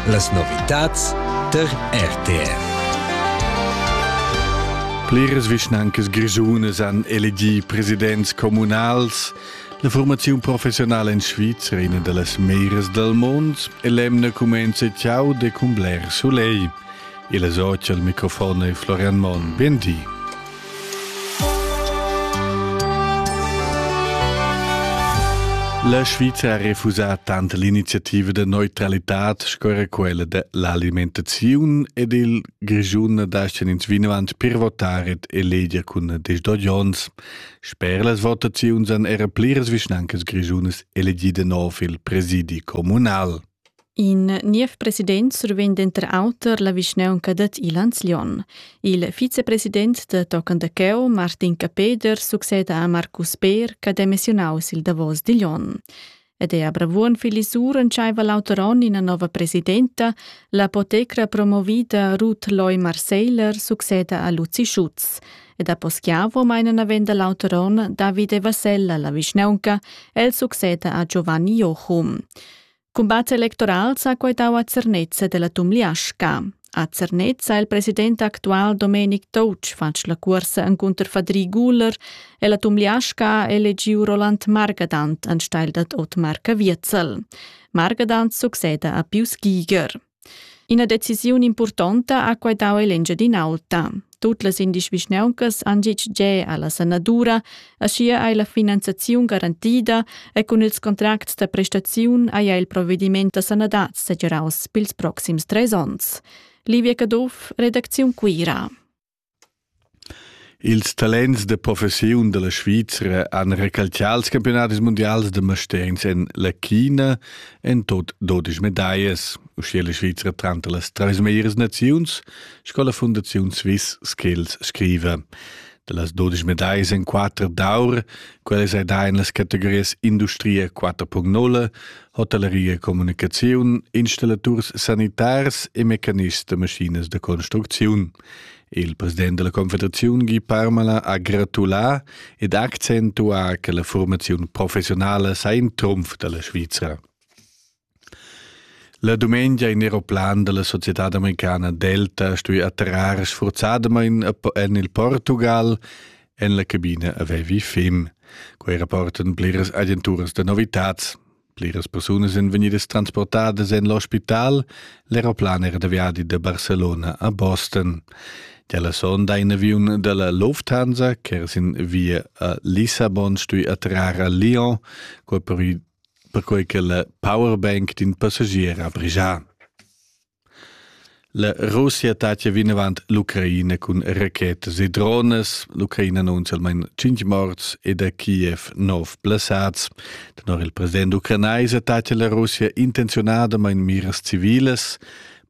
Las novitads tar RTR. Pliras vischnancas grischunas han elegì presidents communals. La formaziun professionala en Svizra, ina da las meras dal mund, è l'emna cumenza ciao de cumbler soleil. Il es oci al microfon è Florian Monn. Bindi. La Sviza ha refusà tant l'iniziativa de neutralitad sco era quella de l'alimentaziun ed il Grischun dascen ins vinavant per votare et eleger cun des dos jons. Sper las votaziuns han era pliras vischnancas grisunas elegide nov il presidi comunal. In niev president survegn denter auter la vischnaunca dad Ilanz-Lion. Il vicepresident da tochen da cheu, Martin Capeder, succeda a Marcus Peer ch'ha demissionau sil davos digl onn. Ed è a Bravuon Filisur entscheiva l'auter onn ina nova presidenta, l'apotecra promovida Ruth Loy Marseiler succeda a Luzi Schutz. Ed a Poschiavo meina navenda l'auter onn Davide Vasella la vischnaunca, el succeda a Giovanni Jochum. Cumbat electoral s'ha quaitau a Zernez della Tumliasca. A Zernez ha il president actual Domenic Touch fatg la cuorsa encunter Fadri Guler e la Tumliasca ha elegiu Roland Margadant anstelle dad Otmar Caviezel. Margadant succeda a Pius Giger. Ina decisiun impurtonta ha quai dau ell'Engiadin'Alta. Tut las indies vischnauncas han gitg ge alla sanadura, aschia ei la finanziaziun garantida e cun ils contracts da prestaziun haja il provediment da sanadad segiraus pils proxims treis onns. Livia Caduff, redacziun Cuira. Ils talents da professiun dalla Svizra han recalcià ils campiunadis mundials da mastergns en la China en tut dudesch medaglias, uschia la Svizra tranter las trais meglieras naziuns sco la Fundaziun Swiss Skills scriva. Dallas dudesch medaglias en quatter d'aur, quellas ei da en las categorias industria 4.0, hotelleria e communicaziun, installaturs sanitars e mecanists da maschinas da construcziun. Il president della Confederaziun Guy Parmelin ha gratulà ed accentuà che la formaziun professionala sa in trumf dalla Svizra. La dumengia in aeroplan della società americana Delta stui atterrar sforzadamain en il Portugal en la cabina avevi fim. Quei rapportan pliras agenturas da novitats. Pliras persunas èn vegnidas transportadas en l'ospital, l'eroplan era da viadi da Barcelona a Boston. Dalla sonda in aviun dalla Lufthansa ch'era sin via a Lissabon stui atrar a Lyon, perquai che la powerbank d'in passagier ha brigià. La Russia tatia vinavant l'Ucraina cun rachetas e dronas. L'Ucraina annunzia almain cinq morts ed a Kiev nov blessads. Tenor il president ucrainaisa tatia la Russia intenziunadamain miras civilas.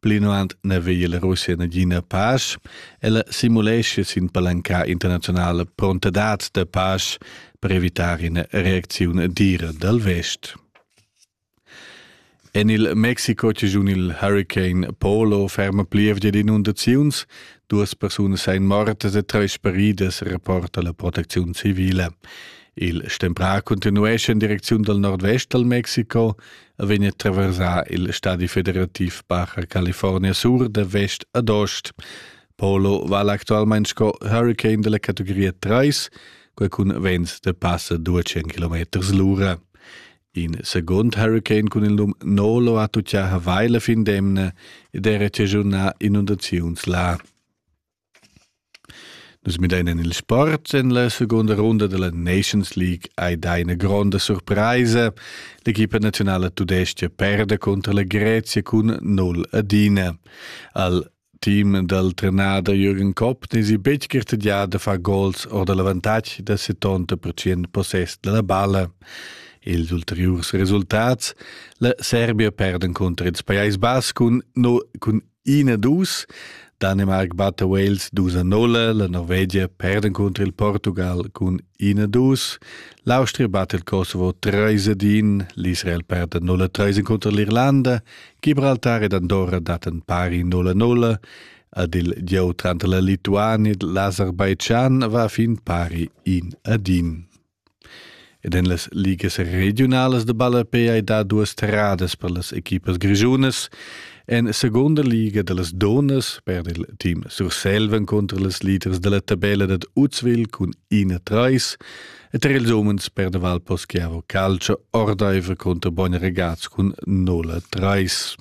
Plinavant n'aveva la Russia nagina pasch. Ella simulescia sin palanca internazionala prontadad da pasch per evitar ina reacziun dira dal vest. En il Mexico chigiun il Hurricane Polo ferma plievgia d'inundaziuns. Duas persunas èn mortas e trais speridas, reporta la protecziun civile. Il stemprà continuesce en direcziun dal nordvest dal Mexico e vegn a traversar il stadi federativ Baja California sur da vest ad ost. Polo vala actualmain sco hurricane della categoria 3, quai cun vents da passa 200 km l'ura. In secund hurricane cun il num Nolo ha tuccià Hawaii la fin d'emna ed era chaschunà inundaziuns là. Nus midain en il sport. En la segunda runda della Nations League hai dà ina gronda surpraisa. L'equipa nazionala tudestga perda cunter la Grezia cun 0 adina. Al team dal trenader Jürgen Kopp n'esi betg gartegià da far gols or da l'avantatg da 70% possess da la balla. Ils ulteriurs resultats, la Serbia perd encunter ils Pajais Bas cun, no, cun 1-2, Danemark batta Wales 2-0, la Norvegia perd encunter il Portugal cun Ina dus. L'Austria bat il Kosovo treis ad in, l'Israel perda 0-3 inconter l'Irlanda, Gibraltar ed Andorra daten pari 0-0, ad il gieu tranter la Lituania ed l'Azerbaijan va fin pari in ad in. Ed en las ligas regionalas de ballapé hai dà duas terradas per las equipas grischunas. En seconda liga dallas donas per il team Surselva contro las leaders dalla tabella dad Uzwil cun ina trais e tar ils umens per de Val Poschiavo Calcio ordaiver contro Bogn Regaz cun nola trais.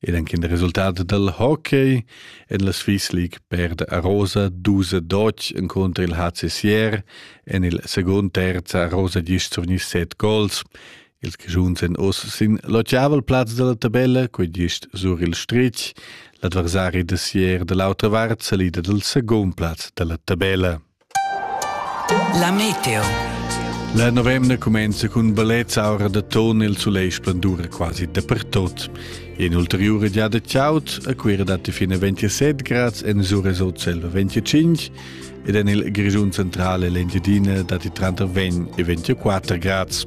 Ed anche il risultat del hockey en la Swiss League perde Rosa 12 Dodge incontro il HCSR en il second terz Rosa 10 7 gols Ils Grischuns èn oz sin l'otgavel plaz da la tabella, quai gist sur il stritg. L'adversari da Sier da l'autra vart salida dal secund plaz da la tabella. La meteo. La novemna cumenza cun ballets aura da ton il sulegl splendura quasi dapertut. In ulteriura giada chaud, a Cuira datti fino 27 grads, en Suresot selva 25 ed en il Grischun centrale l'Engiadina datti tranter 20 e 24 grads.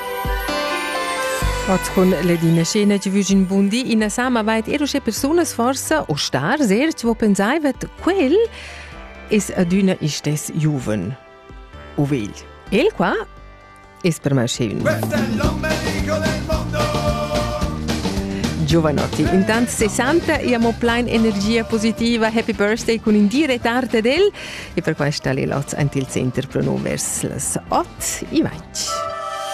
Patrun Ledina Scena ci vügin bundi ina sama vait er usche persunas forsa o star sehr ci vo pensai vet quel es adüna istes juven. O vegl. El qua es per me schön. Giovanotti. Intant 60 abbiamo plein energia positiva. Happy birthday con in dire tarde del. E per questo le lots anti il center pronovers las 8 e 20.